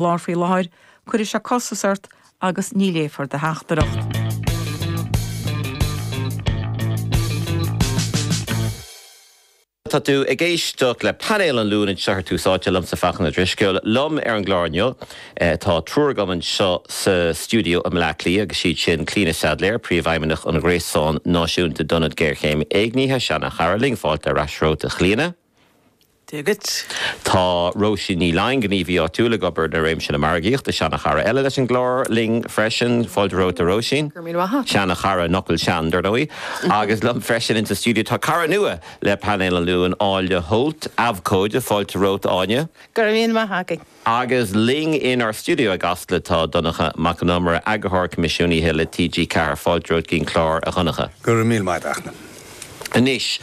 lár faoi láthair, cuirfidh sé costas ort agus ní léifear do theachtaireacht. Tá tú ag éisteacht le Painéal an Luain anseo ar Tús Áite liomsa Fachtna Ó Drisceoil. Liom ar an gclár inniu tá triúr agam anseo sa stiúideo i mBleá Cliath agus siad sin Clíona Saidléar, Príomhfheidhmeannach an Ghréasáin Náisiúnta d'Ionaid Géarchéime Éignithe, seanchara linn, fáilte ar ais romhat a Chlíona. Diagacht. Tá Róisín Ní Loinn gníomhaí áitiúil ag obair i réimse na margaíochta. Seana-chara eile leis an gclár linn freisin. Fáilte romhat a Róisín. Go raibh míle maith. Seana-chara, an fhocal sean dar ndóigh. Agus liom freisin ins an stiúideo tá cara nua le Painéal an Luain, Áine Holt, abhcóide. Fáilte romhat Áine. Go raibh míle maith agat. Agus linn inár stiúideo i gCasla tá Donncha Mac an Iomaire, Eagarthóir Coimisiúnaithe le TG4. Fáilte romhat chuig an gclár, a Dhonncha. Go raibh míle maith agat. Anois,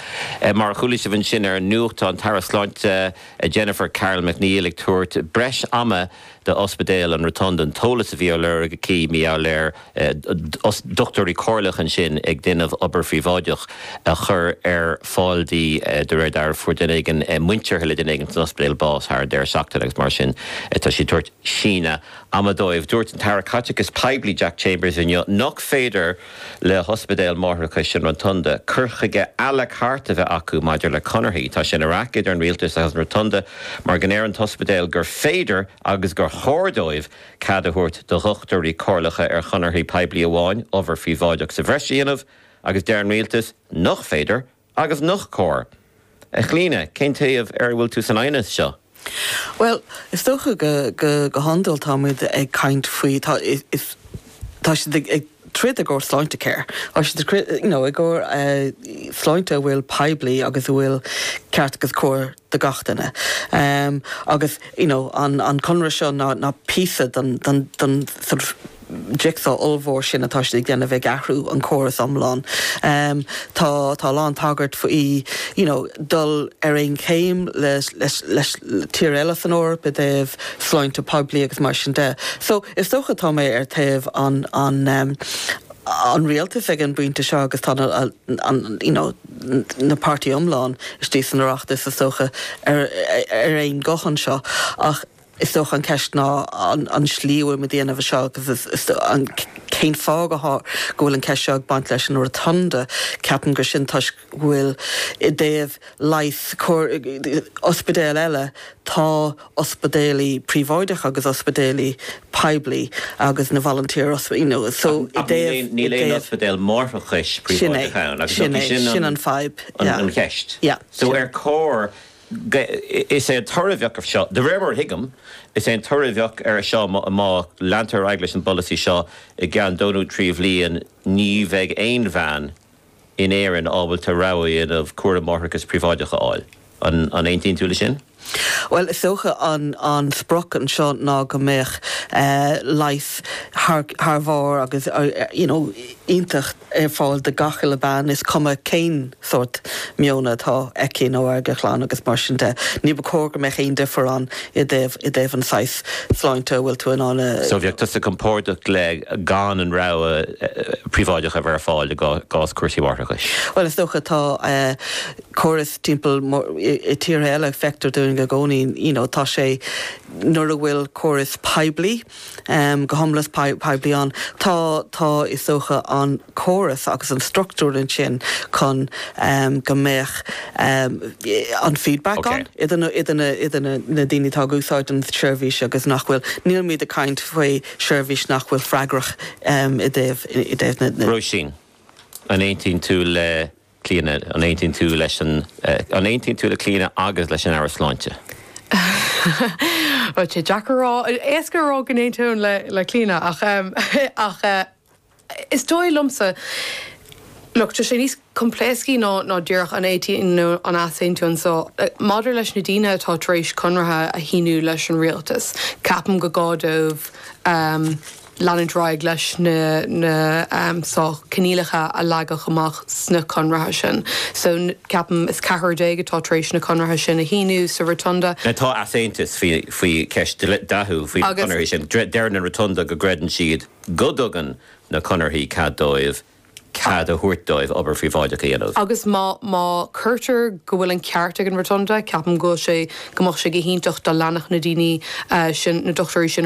mar a chuala sibh ansin ar an nuacht, tá an tAire Sláinte, Jennifer Carroll MacNeill, ag tabhairt breis ama d'Ospidéal an Rotunda an t-eolas a bhí á lorg aici maidir le, dochtúirí comhairleacha ansin ag déanamh obair phríobháideach a chur ar fáil di, de réir dealraimh. Fuair duine éigin muinteartha le duine éigin san ospidéal bás thar deireadh seachtaine agus mar sin tá sí ag tabhairt síneadh ama dóibh. Dúirt an tAire Caiteachais Poiblí Jack Chambers inniu nach féidir le hOspidéal Máithreachais an Rotunda cur chuige à la carte a bheith acu maidir le conarthaí. Tá sé ina raic idir an Rialtas agus an Rotunda mar go ndeireann an t-ospidéal gur féidir agus gur chóir dóibh cead a thabhairt do dhochtúirí comhairleacha ar chonarthaí poiblí amháin obair phríobháideach sa bhreis a dhéanamh, agus deir an rialtas nach féidir agus nach cóir. A Chlíona, cén taobh ar a bhfuil tú san aighneas seo? Bhuel, is dócha go hiondúil tá muid ag caint faoi, tá siad ag. throid i gcomhair Sláintecare, you know, i gcomhair sláinte a bhfuil poiblí agus a bhfuil ceart agus cóir do gach duine. Agus, you know, an conradh seo ná píosa den sort of jigsaw ollmhór sin atá siad ag déanamh ag athrú an córas iomlán. Tá a lán tagairt faoi, you know, dul ar aon chéim le tíre eile san Eoraip i dtaobh, sláinte poiblí agus mar sin de. So, is dócha, tá mé ar taobh an rialtais ag an bpointe seo agus tá you know na páirtí iomlán istigh san Oireachtas is dócha ar aon guth anseo ach is dócha an ceist ná an slí a bhfuil muid ag déanamh é seo agus cén fáth go bhfuil an ceist seo ag baint leis an Rotunda, ceapaim gur sin toisc. bhfuil i dtaobh leighis ospidéil eile, tá ospidéalí príobháideacha agus ospidéalí poiblí agus na voluntary you know so i dtaobh. Ach níl aon ospidéal máithreachais príobháideach ann agus sin é sin an fadhb yeah an cheist yeah so ar chóir go is é an toradh a bheadh ar seo de réir mar a thuigim is é an toradh a bheadh ar seo má leantar ar aghaidh leis an bpolasaí seo i gceann dó nó trí bliana ní bheidh aon bhean in Éirinn ábalta rogha a dhéanamh cúram máithreachais príobháideach a fháil. An aontaíonn tú leis sin? Bhuel, is dócha an sprioc anseo ná go mbeadh leigheas thar barr agus you know iontach ar fáil do gach uile bean, is cuma cén sórt maoin atá aici nó ag a clann agus mar sin de. Níor chóir go mbeadh aon difríocht ann i dtaobh, i dtaobh an saghas sláinte a bhfuil tú in ann a. So bheifeása compordach le gan an rogha príobháideach a bheith ar fáil i gcás cúrsaí máithreachais. Bhuel, is dócha tá an córas timpeall i tíortha eile feictear dúinn i gcónaí you know tá sé nuair a bhfuil córas poiblí, go hiomlán poiblí ann. Tá, tá, is dócha, an córas agus an structúr ansin chun go mbeadh an feedback ann idir idir na daoine atá ag úsáid an tseirbhís agus nach bhfuil. Nílimid ag caint faoi sheirbhís nach bhfuil freagrach i dtaobh, i dtaobh na. Róisín, an aontaíonn tú le. Clíona, an aontaíonn tú leis an, an aontaíonn tú le Clíona agus leis an Aire Sláinte? Bhuel, tá sé deacair a rá, éasca a rá go n-aontaím le, le Clíona ach, ach is dóigh liomsa, look, tá sé níos coimpléascaí ná, ná díreach an aontaíonn nó an easaontaíonn so, maidir leis na daoine atá tar éis conraithe a shíniú leis an rialtas, ceapaim gur gá dóibh, leanúint ar aghaidh leis na coinníollacha a leagadh amach sna conraithe sin. So, ceapaim, is ceathrar déag atá tar éis na conraithe sin a shíniú sa Rotunda. Tá easaontas faoi cheist dhleathach faoi na conarthaí sin. Deireann an Rotunda go gcreideann siad go dtugann na conarthaí cead dóibh cead a thabhairt dóibh obair phríobháideach a dhéanamh. Agus má, má chinntear go bhfuil an ceart ag an Rotunda, ceapaim go bhfuil sé, go mbeadh sé go hiontach dá leanfadh na daoine sin, na dochtúirí sin,